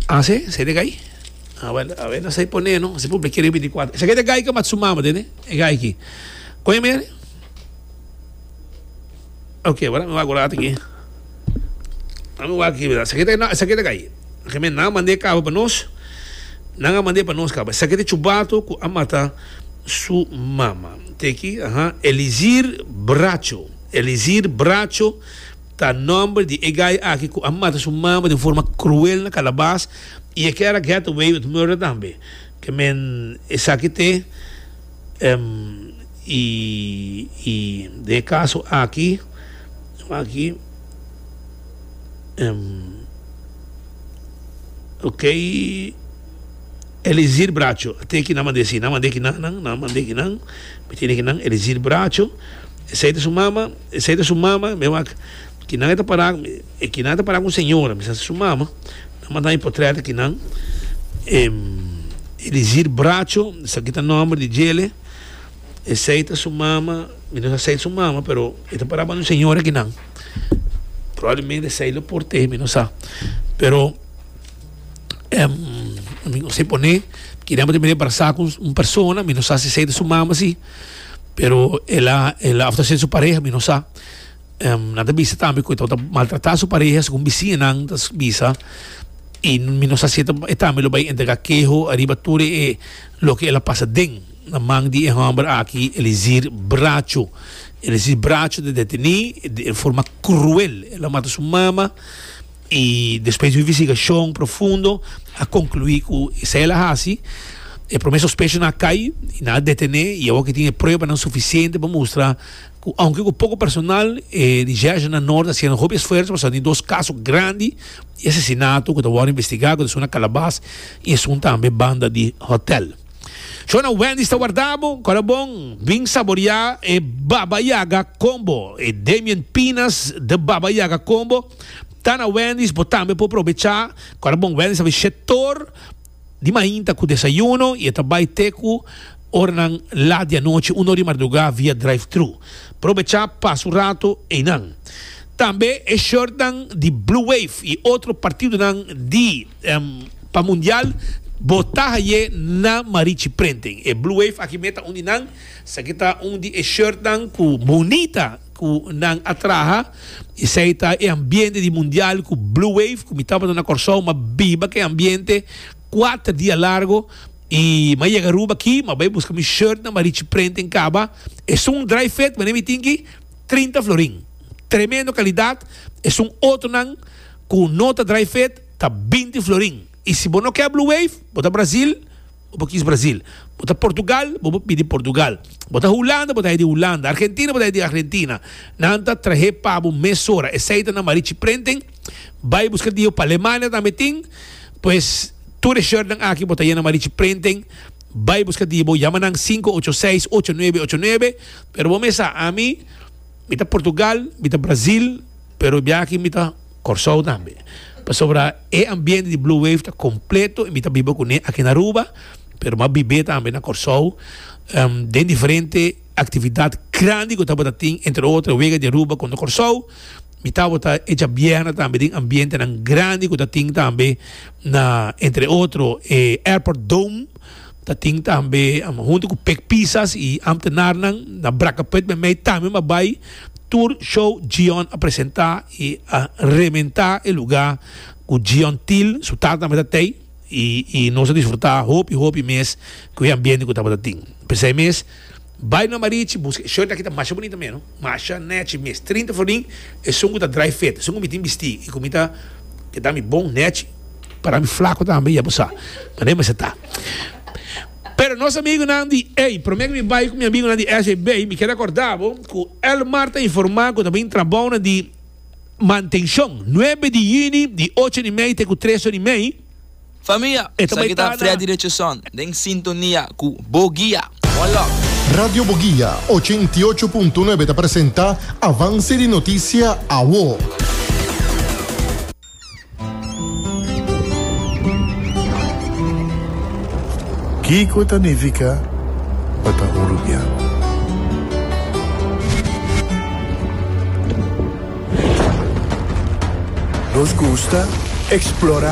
Ase se de gai. Awel, awel na sai pone no, se publike riba di kuarto. Esa ke de gai ke mat su mama den, e gai ki. Oye mer. Okay, wala mi wago rata ki. Ami wago ki bida. Esa ke de na, esa ke de gai. Ke men na mande kaba pa nos. Na nga mande pa nos kaba. Esa ke de chubato ku a mata su mama. Te ki, aha, Elizir Bracho. Elizir Bracho. Ta nomber di e guy aki cu a mata su mama den forma cruel na Calabas y e kera getaway with murder tambe. Ke men esaki te y y den e caso aki aki ok Elizir Bracho a teki nan mande si nan mande ki nan nan mande ki nan mi tene ki nan Elizir Bracho esey ta su mama. Esey ta su mama, mi a wak kinan e ta para, e kinan ta para ku un señora, mi sa su mama, nan manda mi potrèt kinan, e Elizir Bracho, esaki ta nòmber di djele, esey ta su mama, mi no sa esey ta su mama pero e ta para banda un señora kinan, probablemente esey lo port'e, mi no sa, pero mi no si pone kinan bo ta bini barsá ku un persona, mi no sa si esey ta su mama si. pero el a el a of ta haciendo su pareha mi no sa nan ta bisa tambe cu e tabata maltrata su pareha segun biciñanan ta bisa y mi no sa si e tambe lo bay entrega keho ariba tur e loke el a pasa den na man di e homber aki Elizir Bracho Elizir Bracho ta deteni en forma cruel el a mata su mama I despues di un investigashon profundo a konkluí ku esei el a hasi. E promé sospechonan a kai i nan a detené i awor ke tin e pruebanan sufisiente pa mustra ku ounke ku poko personal e Recherche na Norte a siña hopi esfuerso pa sòlví dos kaso grandi di asesinato ku ta wòrdu investigá ku ta esun na Kalabas i esun tambe banda di hòtèl. Shona Wendy's ta wardá bo kòrda bon! Bin saboriá e Baba Yaga Combo, e Damien Pinas The Baba Yaga Combo. Ta na Wendy's bo tambe por probecha kora bon Wendy's a bish'é tor di mainta ku desayuno i e ta bai te ku oranan lat di anochi un or di mardugá via drive-thru. Probecha pasa un rato einan. Tambe e shortnan di Blue Wave i otro partidonan di pa mundial bo ta hay'é na Marichi Printing. E Blue Wave aki meta un di nan sa ki ta un di e shortnan ku bunita. ku nan a traha esei ta e ambiente di mundial ku Blue Wave ku mi tabata na Kòrsou m'a biba ke ambiente kuater dia largu i m'a yega Aruba aki m'a bai buska mi shirtnan m'a richi prenta en kaba esun dry fit manera mi tin ki trinta florin tremendo kalidat esun otronan ku no ta dry fit ta binti florin i si bo no ke Blue Wave bo ta Brazil bo kis Brasil. Bo ta Portugal, bo por pidi Portugal. Bo ta Hulanda, bo ta hei di Hulanda. Argentina, bo ta hei di Argentina. Nan ta trahe pa bo mesora. Esei ta nan marichi prenten. Bai buska dijo pa Alemania tambe tin. Pues tur e shirtnan aki bo ta yena marichi prenten. Bai buska dijo bo. Yama nan sinku ocho seis ocho nuebe ocho nuebe. Pero bo mes sa, ami mi ta Portugal, mi ta Brasil. Pero bia aki mi ta Kòrsou tambe, pasobra e ambiente di Blue Wave ta kompleto i mi ta biba kuné aki na Aruba, pero mi a bib'é tambe na Kòrsou den diferente aktividat grandi ku tabata tin, entre otro Wega di Aruba kontra Kòrsou. Mi tabata e djabièrnè tambe den ambientenan grandi ku ta tin tambe na, entre otro, e Airport Dome. Ta tin tambe am hunto cu Pek Pisas y ambtenarnan na Bracaput me mey tambe m'a bay tur show Gion a presenta y a rementa e lugar cu Gion Til su tata tambe ta tey y nos a disfruta hopi hopi mes cu e ambiente cu tabata tin. P'esey mes. Bai na Marichi buska e shirt aki ta masha bunita meno, masha, nechi, mes trinta florin, esun ku ta dry fit, esun ku mi tin bisti i ku mi ta keda mi bon, nechi, para mi flaku tambe ya bo sa mane mester ta. Pero nos amigunan di ei, prome ku mi bai ku mi amigunan di SAB mi keda korda bo ku Elmar ta informa ku ta bin trabounan di mantenshon nuebe di yuni di ocho ori mei te ku tres ori mei, Famia, esaki ta Freddy Richardson den sintonia cu Bo Guia. Bon lok! Radio Bo Guia ochenta i ocho punto nuebe ta presenta Avance di Noticia Awo. Kico ta nifica pa ta un rubiano? Nos gusta explora